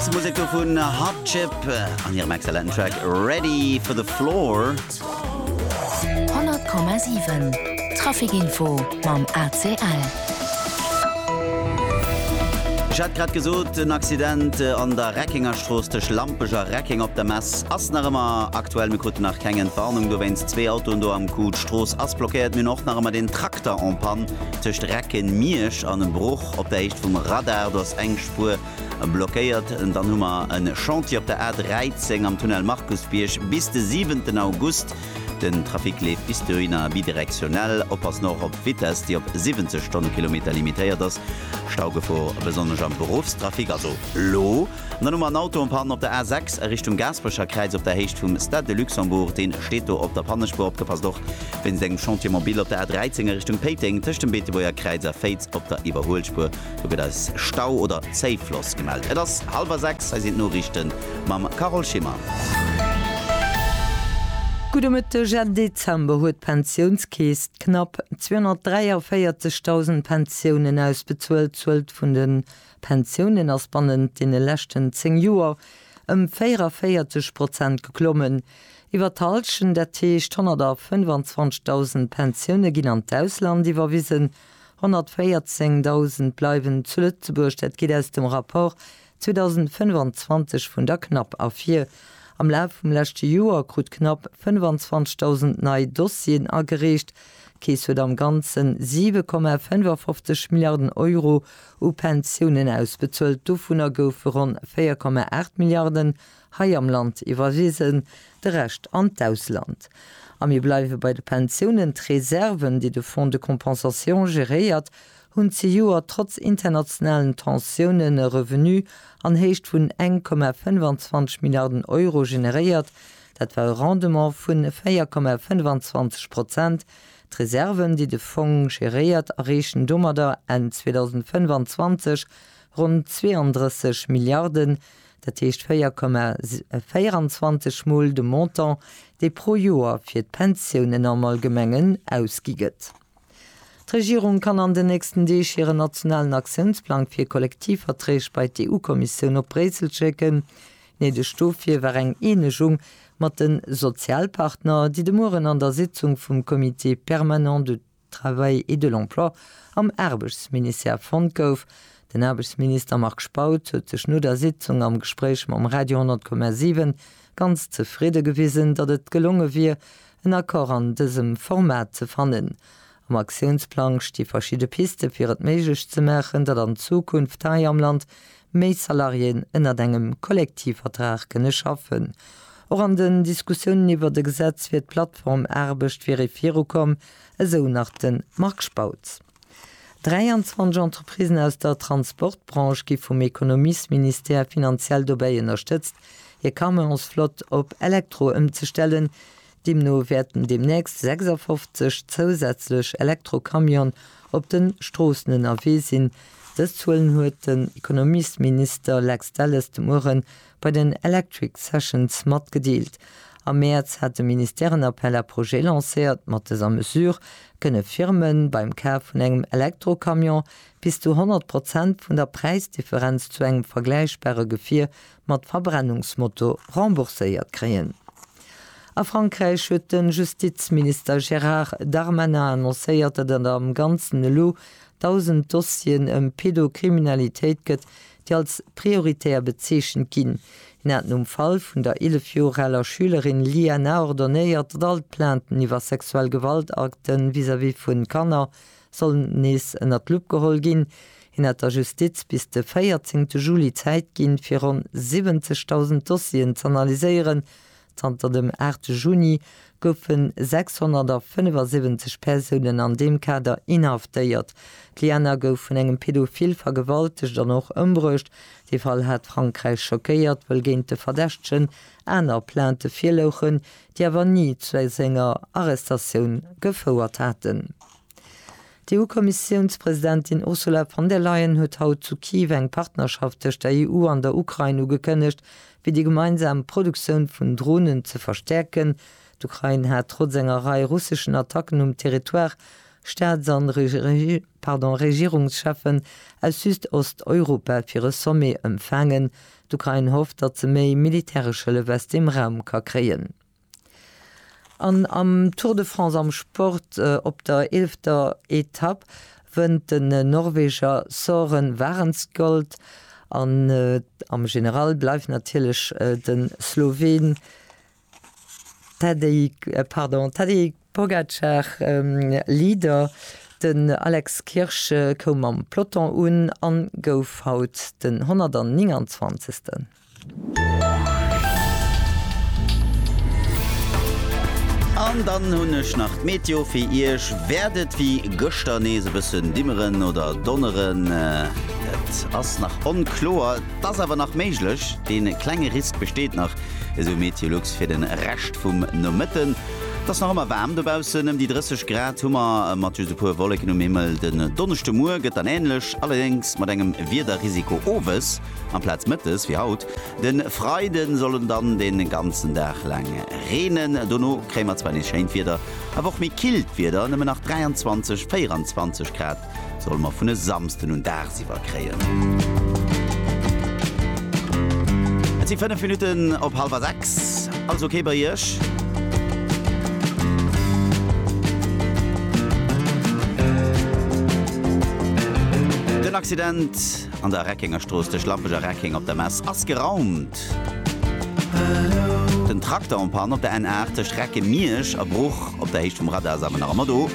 D'Dance Musek do vun Hot Chip an hirem exzellenten Track Ready for the Floor. 100,7 Trafic Info mam ACL. Ech hat grad gesot, en Accident an der Reckengerstrooss tëscht Lampech a Reckeng op der Mess ass nach ëmmer aktuell. Mir kruten nach keng Entwarnung dowéinst. Zwee Autoen do am Coup, d'Strooss ass blockéiert. Mir hunn och nach ëmmer deen Trakter en panne tëscht Recken-Miersch an Bruch op der Héicht vum Radar. Do ass eng Spuer Blockéiert, dann hu mer e Chantier op der A 13 am Tunnel Markusbierg bis de siwenten August. Den Trafic leeft bis dohinner bidirektionell. Oppassen och op d'Vitess, déi op 70 Stonnekilometer limitéiert ass. Staugefor besonnesch am Beruffstrafic, also elo. An dann hu mer en Auto en panne op der A 6 a Richtung Gaasperecherkräiz op der Héicht vum Stade de Luxembourg. Dee steet do op der Pannespuer. Opgepasst och wéinst engem Chantier mobile op der A 13 a Richtung Péiteng tëscht dem Beetebuerger Kräiz a Féiz op der Iwwerhuelspuer. Do gëtt eis Stau oder Zéifloss gemellt. Et ass hallwer 6, hei sinn d'Noriichten mam Carole Schimmer. Gudde Mëtteg, Enn Dezember huet d'Pensiounskeess d'knapp 243.000 Pensiounen ausbezuelt. D'Zuel vun de Pensiounen ass bannent deene leschten 10 Joer ëm 44 Prozent geklommen. Iwwer d'Hallschent, dat heescht 125.000 Pensioune ginn an d'Ausland iwwerwisen, 114.000 bleiwen zu Lëtzebuerg, dat geet aus dem Rapport 2025 vun der CNAP ervir. Am Laf vum leschte Joer krut d'CNAP 25.000 nei Dossieren agereecht. D'Keess huet am Ganze 7,55 Milliarden Euro u Pensiounen ausbezuelt, dovunner goufe ronn 4,8 Milliarden Hei am Land iwwerwisen, de Rescht an d'Ausland. A mir bleiwe bei de Pensiounen, D'Reserven, déi de Fonds de compensation geréiert, hunn zejoert trotz internationalen Tensiounen e Revenu an Héicht vun eng Komma 25 Milliarden Euro generéiert. Dat war e Rendement vu 4 Komma 25 Prozent. D'Reserven, déi de Fong geréiert, erreechen domadder Enn 2025 ronn 32 Milliarden. dat heescht 4,24 mol de Montant, dee pro Joer fir d'Pensiounen am Allgemengen ausgi gëtt. D'Regierung kann an den nächsten Deeg hiren nationalen Aktiounsplang fir Kollektivverträg bei d'EU-Kommissioun op Bréissel schécken. Néideg dofir war eng Eenegung mat de Sozialpartner, déi de Mueren an der Sitzung vum Comité permanent de. Travail et de l'Emploi am Aarbechtsministère fonnt gouf. Den Aarbechtsminister Marc Spautz huet sech no der Sitzung am Gespréich mam Radio 10,7 ganz zefridde gewisen, datt et gelonge wier, en Accord an dësem Format ze fannen. Am Aktiounsplang sti verschidde Piste fir et méiglech ze maachen, datt an Zukunft hei am Land Méi Salariéen ënnert engem Kollektivvertrag kënne schaffen. Och an den Diskussiounen iwwert e Gesetz fir d'Plattform Aarbecht wier ee virukomm, esou nach de Marc Spautz. 23 Entreprisen aus der Transportbranche gi vum Ekonomiesministère finanziell dobäi ënnerstëtzt, hir Camionsflott op Elektro ëmzestellen. Deemno wäerten deemnächst 56 zousätzlech Elektrocamione op de Stroossen ënnerwee sinn. Dës Zuelen huet den Ekonomiesminister Lex Delles de Muere bei den Electric Sessions matgedeelt. Am Mäerz hat de Ministère en Appel à projets lancéiert. Mat dëser Mesure kënne Firme beim Kaf vun engem Elektrocamion bis zu 100 Prozent vun der Präisdifferenz zu engem vergläichbare Gefier mat Verbrennungsmoto rembourséiert kréien. A Frankräich huet de Justizminister Gérard Darmanin annoncéiert, datt et am Ganzen elo 1.000 Dossieren ëm Pedokriminalitéit gëtt, déi als prioritär bezeechent ginn. Hien hat nom Fall vun der 11 Joer aler Schülerin Liana ordonéiert, datt all d'Plainten iwwer sexuell Gewaltakte vis-à-vis vu Kanner soll nees ënner d'Lupp geholl ginn. Hien hat der Justiz bis de 14 te Juli Zäit ginn, fir ronn 70.000 Dossieren z'analyséieren. Zanter dem 8 te Juni goufe 675 Persounen an deem Kader inhaftéiert. D'Liana gouf vun engem Pedophil vergewaltegt an och ëmbruecht. Dee Fall hat Frankräich schockéiert, wëll géint de Verdächtegen aner Plainte virlouchen, déi awer ni zu esou enger Arrestatioun gefouert haten. D'EU-Kommissiounspresidentin Ursula von der Leyen huet haut zu Kiew eng Partnerschaft tëscht der EU an der Ukrain ugekënnegt, fir déi gemeinsam Produktioun vun Dronen ze verstäerken. D'Ukrain hat trotz enger Rei russeschen Attacken um Territoire Staats a Regierungscheffen aus Süd-Ost-Europa fir e Sommet ëmfaangen, D'Ukrain hofft, datt se méi militäresch Hëllef aus deem Raum ka kréien. An am Tour de France am Sport, op der eelfter Etapp wënnt den Norweger Soren Wahrenst Gold an am General bleift natierlech de Sloween D'Tadej, pardon, d'Tadej Pogacar, Leader, den Alex Kirsch koum mam Peloton un a gouf haut den 129. An dann hunn ech nach d'Meteo fir Iech. Wäert et wéi gëschter nees e bëssen dimmeren oder donneren? Et ass nach onkloer. 't ass awer nach méiglech, dee klenge Risk besteet nach, esou MeteoLux fir de Rescht vum Nomëtten. 't ass nach ëmmer waarm dobaussen, ëm déi 30 Grad hu mer, mat just e puer Wolleken um Himmel. Den Donneschdemuer gëtt dann änlech, allerdéngs mat engem Wiederrisiko owes amplaz mëttes wéi haut. De Freide soll et dann de ganzen Dag laang reenen, dono kréie mer zwar nees schéint Wieder, awer och méi killt Wieder, nëmmen nach 23, 24 Grad. Solle mer vun e Samsden un dagsiwwer kréien. Et si 5 Minutten op hallwer 6. Alles ok bei Iech? Den Accident an der Reckengerstrooss tëscht Lampech a Reckeng op der Mess ass geraumt. Den Trakter en panne op der N8 tëscht Recke-Miersch a Bruch op der Héicht vum Radar ass awer nach ëmmer do.